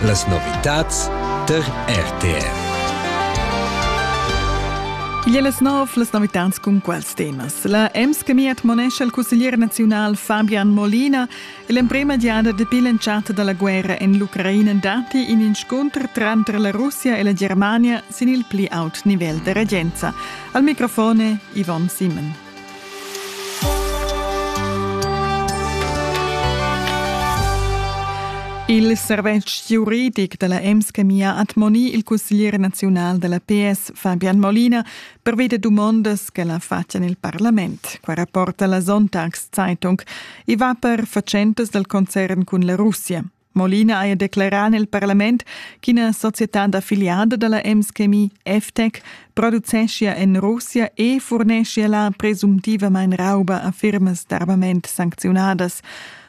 Las novitads tar RTR. Igl è las nov las novitads cun quals temas. La EMS-Chemia monescha il cusseglier naziunal Fabian Molina e l'emprema giada dapi l'entschatta da la guerra en l'Ucraina datti in inscunter tranter la Russia e la Germania sin il pli aut nivel da regenza. Al microfone Yvonne Simon. Il servetsch giuridic dalla Emschemia admoni il cusseglier naziunal dalla PS Fabian Molina per veder dumondas che la faccian il parlament. Qua rapporta la Sonntagszeitung. I va per fatschentas dal concern cun la Russia. Molina haja declerà en il parlament ch'ina società d'affiliada da la Ems-Chemie FTEC produceschia en Russia e furneschia là presumtivamain rauba a firmas d'armament sancziunadas.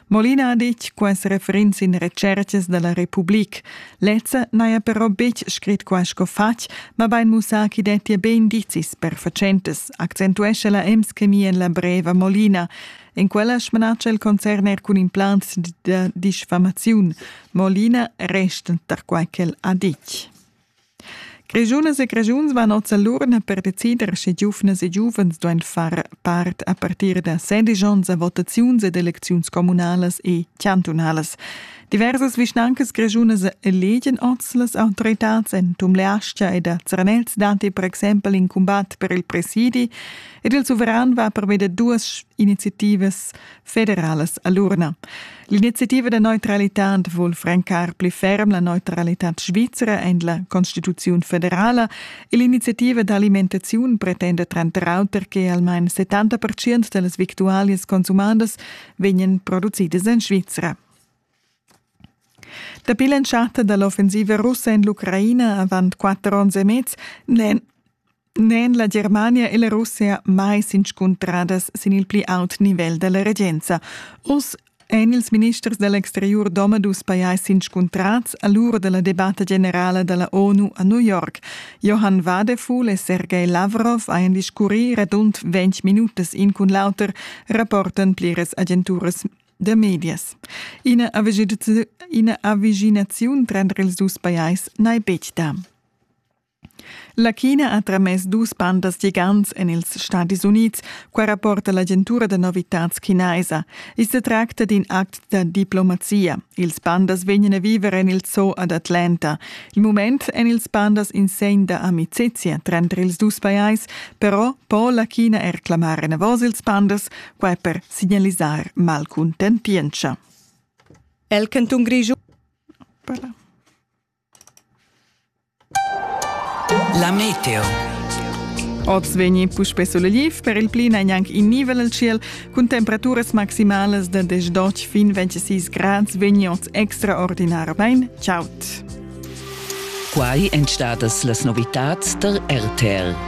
Molina ha ditg quests referents in retschertgas da la Republik. Lezza n'haja però betg scrit qua sco fatg, mabain mussà ch'i dettia be indizis per fatschentas, accentuescha la Ems-Chemie en la breva Molina. En quella smanatscha il concern er cun implants da disfamaziun, mo l'ina resta tar quai ch'el ha ditg. Grischunas e Grischuns van oz l'urna per decider, sche giuvnas e giuvens duain far part a partir da 16 onns a votaziuns ed elecziuns communalas e chantunalas. Diversas vischnancas grischunas elegen oz las autoritads en Tumleastga ed a Zernez datti per exempel in cumbat per il presidi, Ed il suveran va per veder duas iniziativas federalas a l'urna. L'iniziativa da neutralità vul francar pli ferm la neutralità svizra en la Constituziun federala e l'iniziativa d'alimentaziun pretenda tranter auter che almain 70% da las victualias consumadas vegnan producidas en Svizra. Dapi l'entschatta dall'offensiva russa en l'Ucraina avant quatter onns e mez n'è n'èn la Germania e la Russia mai s'inscuntradas sin il pli aut nivel da la regenza. Uss èn ils ministers da l'exteriur domadus pajais s'inscuntrads a l'ura da la debatta generala da la ONU a New York. Johann Wadefuhl e Sergei Lavrov hajan discurrì radund ventg minutas in cun l'auter, rapportan pliras agenturas da medias. Ina avaginaziun tranter ils dus pajais n'hai betg dà. La China ha tramess dus pandas gigants en ils Stadis Unids. Qua rapporta l'agentura da novitads chinaisa. I sa tracta d'in act da diplomazia. Ils pandas vegnan a viver en il zoo ad Atlanta. Il mument èn ils pandas in segn da amicizia tranter ils dus pajais, però po la China er clamar enavos ils pandas, quai per signalisar malcuntentientscha. El cantun Grischun. Voilà. La meteo. Oz vegni puspè sulegliv, per il pli n'è gnanc in nivel al tschiel. Cun temperaturas maximalas da 18 fin 26 grads vegni oz extraordinarmain chaud. Quai èn stadas las novitads tar RTL.